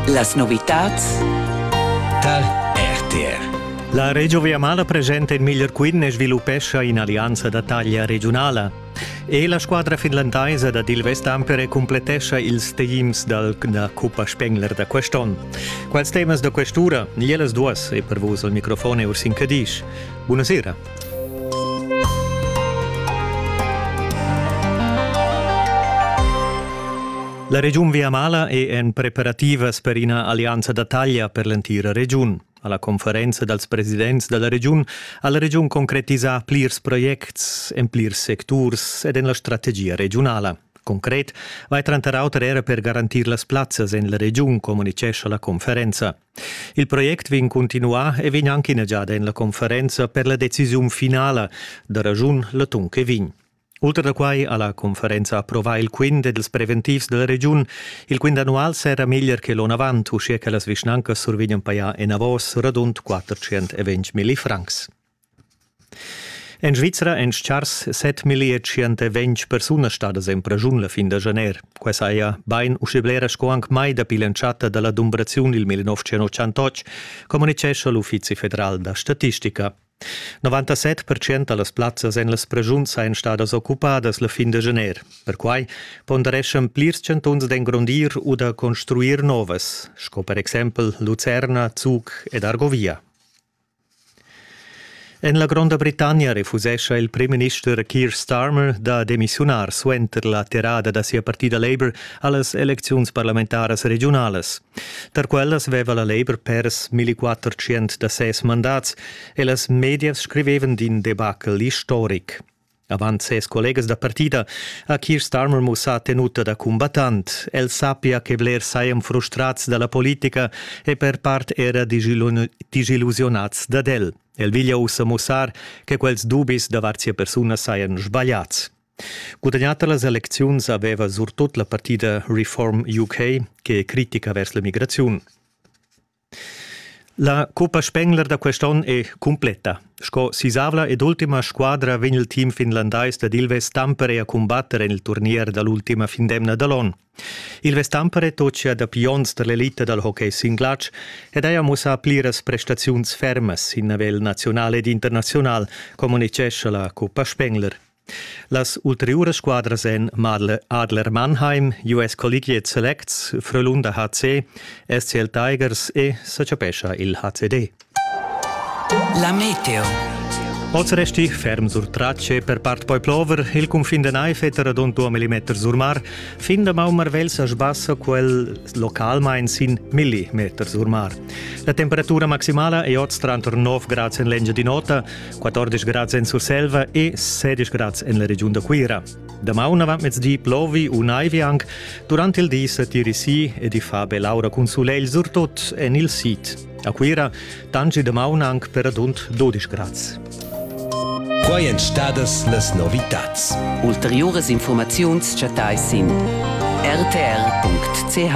Las novitads tar RTR. La Regio Viamala presenta in miglior quint e sviluppescha in'allianza da taglia regiunala. E la squadra finlandaisa da Dil Vestampere complettescha ils teams dal, da Cuppa Spengler da quest'onn. Quals temas da quest'ura? Ielas duas e per vus al microfon è Ursin Cadisch. Buonasera. La regiun Viamala è en preparativas per ina allianza da taglia per l'entira regiun. Alla conferenza dals presidents dalla regiun ha la regiun concretisà plirs projects en plirs secturs ed en la strategia regiunala. Concret vai tranter auter era per garantir las plazzas en la regiun, communicescha la conferenza. Il project vegn continuà e vegn anche inegiada en la conferenza per la decisiun finala da ragiun l'atun che vegn. Ultra da quai ha la conferenza approvà il quint ed ils preventivs della regiun. Il quint annual serra meglier che l'on avant, uschia che las vischnancas survegnan pajar enavos radund 420 milli francs. En Svizra èn tschars 7.120 persunas stadas en praschun la fin da janer. Quai saja bain uschè blera sco anc mai dapi l'entschatta da la dumbraziun il 1988, communitgescha l'Uffizi federal da statistica. 97% da las plazzas en las preschuns sajan stadas occupadas la fin da janer. Perquai pondereschan plirs chantuns d'engrondir u da construir novas, sco per exempel Lucerna, Zug ed Argovia. En la Gronda Britannia refusescha il primminister Keir Starmer da demissiunar suenter la terrada da sia partida Labour a las elecziuns parlamentaras regiunalas. Tar quellas veva la Labour pers 1400 da ses mandats e las medias scrivevan d'in debacle istoric. Avant ses collegas da partida ha Keir Starmer mussà tenuta da cumbattant. El sappia che blers sajan frustrads da la politica e per part era disillusionads dad el. El veglia ussa mussar che quels dubis davart sia persuna sajan sbagliads. Gudagnata las elecziuns aveva surtut la partida Reform UK, che è critica vers la migraziun. La Coppa Spengler da quest onn è cumpletta. Sco sisavla ed ultima squadra vegn il team finlandais dad Ilves Tampere a cumbatter en il turnier da l'ultima fin d'emna da l'onn. Ilves Tampere tocia dapi onns tar l'elita dal hockey sin glatsch ed haja mussà pliras prestaziuns fermas sin nivel naziunal ed internaziunal, communitgescha la Coppa Spengler. Las ulteriuras squadras èn Madle Adler Mannheim, US Collegiate Selects, Frölunda HC, SCL Tigers e sa chapescha il HCD. La meteo. Oz resti ferm sur tracce per part poi plover, il cunfin de Naifeter ad un 2 mm sur mar, fin da Maummarvel sa sbassa quel localmain sin millimeter sur mar. La temperatura maximala è oz tranter 9 grad en l'engia di nota, 14 grads en Surselva e 16 grads en la regiun da Cuira. Damaun avant mezdi plovi u naivi anc. Durant il di sa tiri si ed i fa bell'aura cun sulegl surtut en il sid. A Cuira tangi damaun anc per adund 12 grads. Quai èn stadas las novitads. Ulteriuras informaziuns chattais sin rtr.ch.